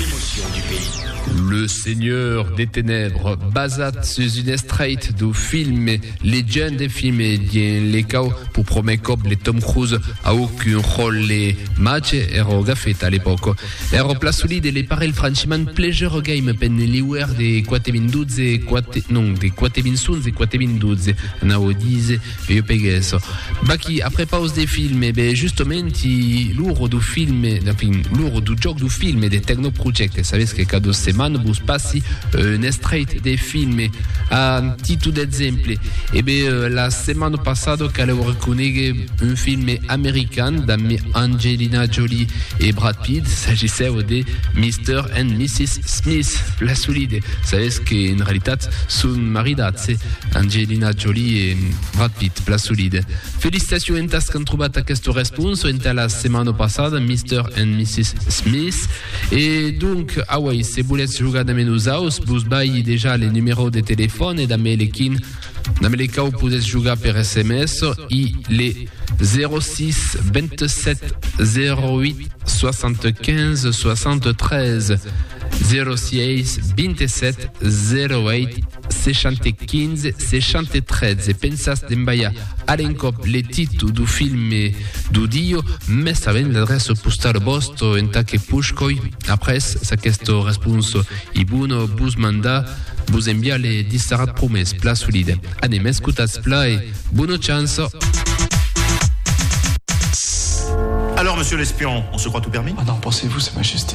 Emotions du pays. Le Seigneur des Ténèbres, basat sus un estrèit dau film Legend e Fime dien le cau pour promèr còp le Tom Cruise auc un ròlle màger èra auga feta a l'epòca. Èra pla solid e le parelh franchement pleasure game pen liuèr de 4 min 12 e 4 non de 4 min 11 e 4 min 12 anau dise. Io peguesso. Bachi, aprepaus de filme, be justomenti l'uro du filme, enfin, l'uro du joc du filme de Tecnoproject. Sabes que cada setmana vos passi un estrait de filme. A titu d'exemple, e be la setmana passada caleu reconegue un filme american damb Angelina Jolie e Brad Pitt, s'agissèu de Mister and Mrs. Smith, la solide. Sabes que en realitat son maridats. Angelina Jolie e Brad Pitt, plan solide. Felicitacion entas qu'an trobat aquesta responsa entà la setmana passada, Mister and Missis Smith. E donc, auei, se volètz jogar damb nosaus, vos balhi dejà le numerò de telefòn e damb le quin damb le quau podètz jogar per sms, i le 06 27 08 75 73. 06 27 08 75 63 se pensas d'envaiar a l'encòp le títol du filme du dio mès avent l'adreça postala vòsta entà que push coi après s'aquesta responsa i bona vos mandar vos enviar le dissarat promés pla solida anem escotats pla e bona chance. Alors, monsieur l'espion, on se croit tout permis? Ah non, pensez-vous, sa majesté.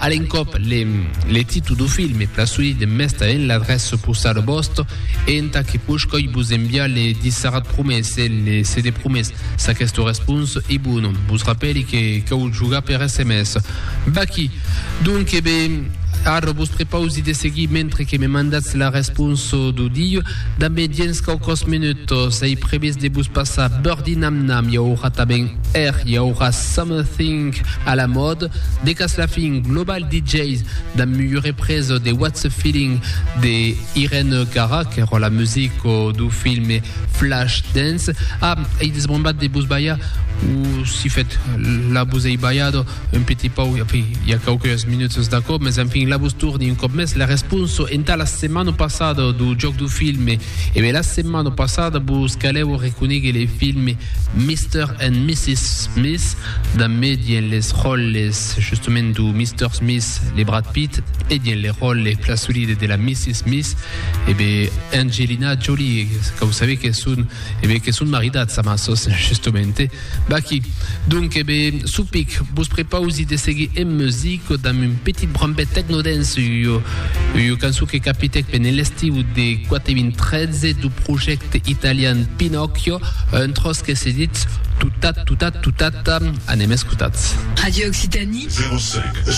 A l'encòp, le títol du film e plaçoí de mesta en l'adrèç supausada vòsta e entà que poiscòi vos enviar le dissarat promés e le CD promés. S'aquesta responsa ei bona, vos rapèli que cau jogar per sms. Vaquí! Donque be, ara vos prepausi de seguir mentre que me mandatz la responsa du dia. Damb e diens quauquòs menutas ei previst de vos passar Birdie Nam Nam i aurà tanben. Er i aurà Summerthing a la mòde, Decas Laughing, Global DJs, damb Muyu Represo, The What's a Feeling de Irène Cara, qu'èra la musico dau filme Flashdance. Ah, ei desbrombat de vos balhar, o si fèt la vos ei balhado. un petit pauc, e enfin, i a quauqueus minuts d'aquò, mas enfin, la vos torni un còp mès la responsa entà la setmana passada dau jòc dau film. E ben, la setmana passada vos calèva reconéguer le film Mister and Missis Smith, damb me dien les ròles justament dau Mister Smith, le Brad Pitt, e dien le ròle plan solide de la Missis Smith, e ben, Angelina Jolie, quau sabé que son, e ben, que son maridats amassos, justamente. Baky, Donc e be, Supic, vos prepausi de seguir en music damb un petit brambet techno-dance, ua cançon que capitèc pendent l'estiu de 4.013 dau projècte italian Pinocchio, un tròç que se ditz Tutat, tutat, tutat, anem escotar. Radio Occitanie. 05,